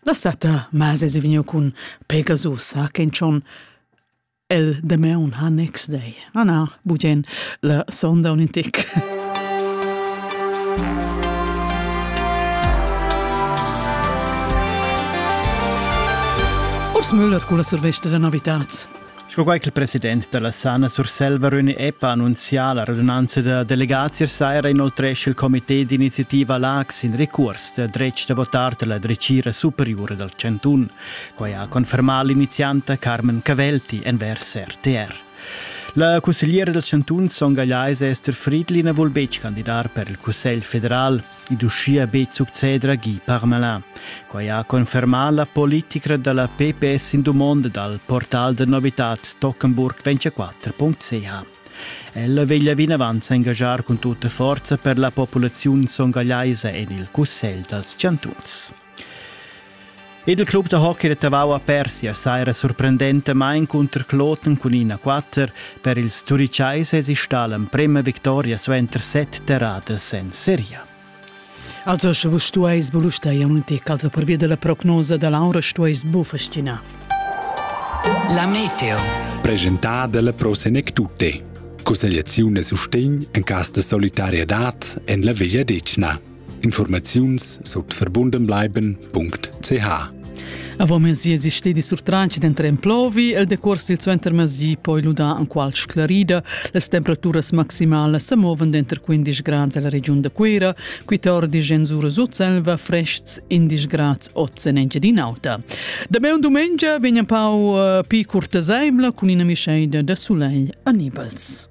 La setta mase se vegniu cun Pegasus ha ken chon el Dameun ha next day. Na na, bugien la sonda un intic. Urs Müller con la survesta da novitats. Sco quai ch'il president da la Sana Surselva Röni Eppa annunzià la radunanza da delegazias saira inoltrescha il comité d'iniziativa Lax in recurs da dretg da votar da la dretgira superiura dal chantun. Quai ha confermà l'inizianta Carmen Cavelti envers RTR. La cussegliera dal chantun Son Gagliais Esther Friedlina vul betg candidar per il Cussegl federal. ed uschia be succeder agì parmalà. Quai ha confermà la politica da la PPS in dumonda dal portal da novitad Tockenburg24.ch. Ella veglia vinavant s'engaschar cun tutta forza per la populaziun songagliaisa en il Cussegl dals chantuns. Ed il club da hockey da Tavau a Persia saira surprendentamain cunter Kloten cun 1-4. Per ils Turichaises stal emprema victoria suenter set terradas en seria. Also sche vus stueis bulusteir munti calzo per via della prognosa da Laura stueis bu fascinar. La Meteo. Presentar della Prosenec Tutte. Cussegliazione e sustegn en cas de solidariedad en la Veglia Decna. Informaziuns sut verbundenbleiben.ch Avant mesi es stedi surtranchi denter emplovi el decuors sil suentermezdi poi luda an qual sclarida. Las temperaturas maximalas se moven denter 15 grads alla regiun da Cuira, 14 en Sura Sutselva, frests 11 grads oz en Engiadin'Auta. Da me un dumengia vegn un pau uh, pi curtaseimla cun ina mischeida da sulei anibels.